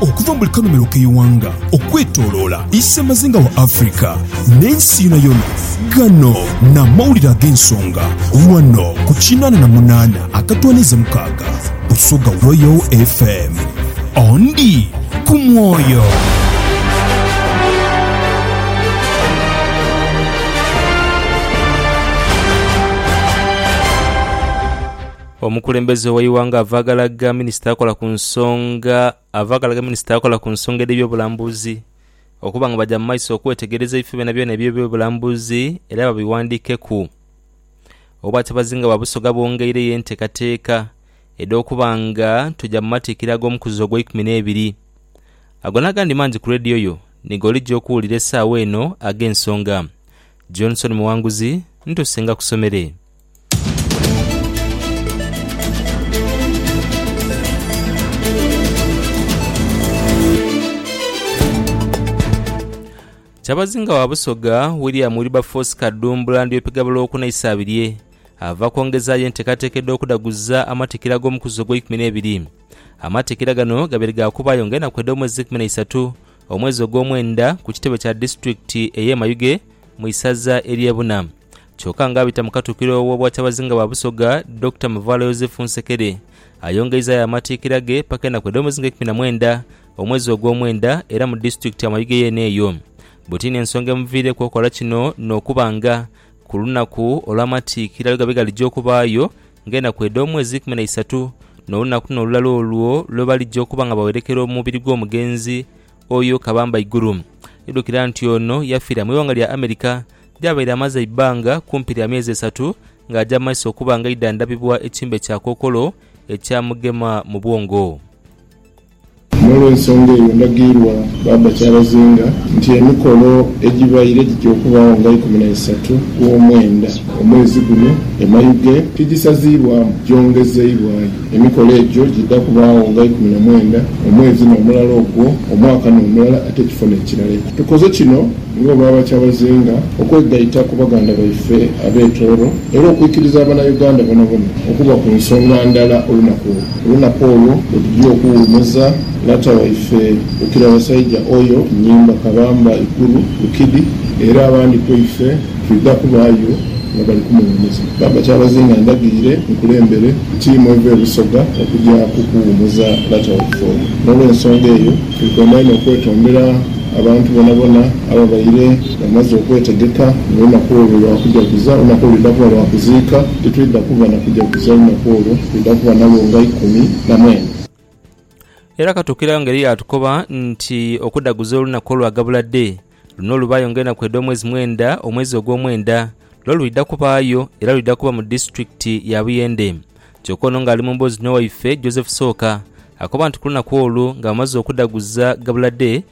Okuva mu buli kanhumilo k'eighanga okwetoloola isemazinga wa Africa n'ensi yonayona, ghano n'amawulire ag'ensonga ghano ku kinaana na munaana akatwaniiza mukaaga Busoga Royal FM. Ondi ku mwoyo. Omukulembeze w'eighanga avaagalagha minisita akola ku nsonga avaagalagha minisita akola ku nsonga edh'ebyobulambuzi okuba nga baja mu maiso okwetegereza ebifo byonabyona eby'ebyobulambuzi era babighandiikeku. Obwatabazinga bwa Busoga bwongeireyo enteekateeka edh'okuba nga tuja mu matikkira ag'omukuzi ogw'eikumi n'ebiri. Ago n'agandi mangi ku leediyo yo ni g'olija okuwulira esaawa eno ag'ensonga. Johnson Muwanguzi, ntuuse ngakusomere. Kyabazinga wa Busoga, William Wilberforce Kadumbula Ndyopiga Buloku n'Isaabirye ava kwongezaayo enteekateeka edh'okudaguza amatikira ag'omukuzi ogw'eikumi n'ebiri. Amatikira gano gabaire ga kubaayo nga enaku edh'omwezi eikumi na isatu omwezi ogw'omwenda ku kitebe kya disitulikiti ey'e Mayuge mu isaza ery'e Buna. Kyoka nga abita mu Katukiro w'Obwakyabazinga bwa Busoga, Dokita Muvaalo Yozefu Nsekere ayongeizayo amatiikira ge paka enaku edh'omuzinga eikumi na mwenda omwezi ogw'omwenda era mu disitulikiti ya Mayuge yeene eyo bwe tiina ensonga emuviireku okola kino n'okuba nga ku lunaku olw'amatiikira lwe gabe galija okubaayo nga enaku edh'omwezi eikumi na isatu n'olunaku luno olulala olwo lwe balija okuba nga bawerekera omubiri gw'omugenzi oyo Kabamba Iguru. Idhukira nti ono yafiira mu ighanga lya America Byabaire amaze eibbanga kumpi lya myezi esatu ng'aja mu maiso okuba ng'aidha ndhabibwa ekimbe kya kookolo ekyamugema mu bwongo. N'olw'ensonga eyo ndhagiirwa Bbaabba Kyabazinga nti emikolo egibaire gitya okubaagho nga ikumi na isatu gw'omwenda omwezi guno e Mayuge tigisaziibwamu gyongezeibwayo. Emikolo egyo gidha kubaagho nga ikumi na mwenda omwezi n'omulala ogwo omwaka n'omulala ate ekifo n'ekirala. Tukoze kino Nga bwaba kyabazinga okwegaita ku baganda baife ab'e Tooro era okwikiriza Abanauganda bonabona okuba ku nsonga ndala olunaku olwo, olunaku olwo lwetugya okuwumuza lata waife Bukira Basaija Oyo, Nyimba, Kabamba, Ikuru, Lukidi era abandi kweife twidha kubaayo nga bali kumuwumuza. Baba Kyabazinga ndagire nkulembere tiimu eva e Busoga okugya kukuwumuza lata waife oyo. N'olwensonga eyo Twikondha inho okwetondera abantu bonabona ababaire bamaze okwetegeka nga olunaku olwo lwa kujaguza, olunaku olwo lwidha kuba lwa kuziika, titwidha kuba na kujaguza lunaku olwo, twidha kuba nalwo nga ikumi na mwenda. Era katuukiragho ngeri yaatukoba nti okudaguza olunaku olwa gabula Dei, Luno lubaayo nga enaku edh'omwezi mwenda, omwezi ogw'omwenda lwo lwidha kubaayo, era lwidha kuba mu disiturikiti ya Buyende. Kyoka ono ng'ali mu mboozi n'owaife Joseph Sooka, akoba nti ku lunaku olwo nga bamaze okudhaguza ghabula dhe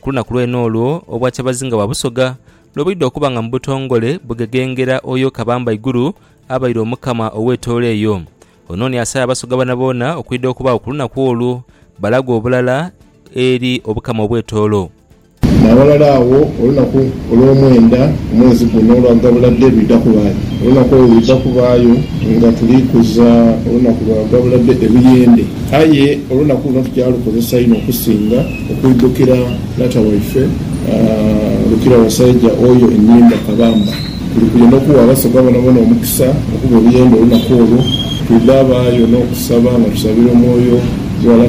ku lunaku lwene olwo Obwakyabazinga bwa Busoga lwe bwidha okuba nga mu butongole bughegengera oyo Kabamba Iguru abaire Omukama ow'etoolo eyo. Ono ni asaba Abasoga boonaboona okwidha okubaagho ku lunaku olwo balagwe obulala eri Obukama obw'etoolo. N'aghalala agho olunaku olw'omwenda mu mwezi guno olwa gabula dhe lwidha kubaayo. Olunaku olwo lwidha kubaayo nga tuli kuza olunaku lwa gabula dhe ebuyende. Aye olunaku luno tugya lukozesa inho okusinga okwidhukira Taata waife Lukirawasaija oyo Enhimba Kabamba. Tuli kuya n'okuwa Abasoga bonaboona omukisa okuba ebuyende olunaku olwo. Twidha baayo n'okusaba nga tusabira omwoyo gwa.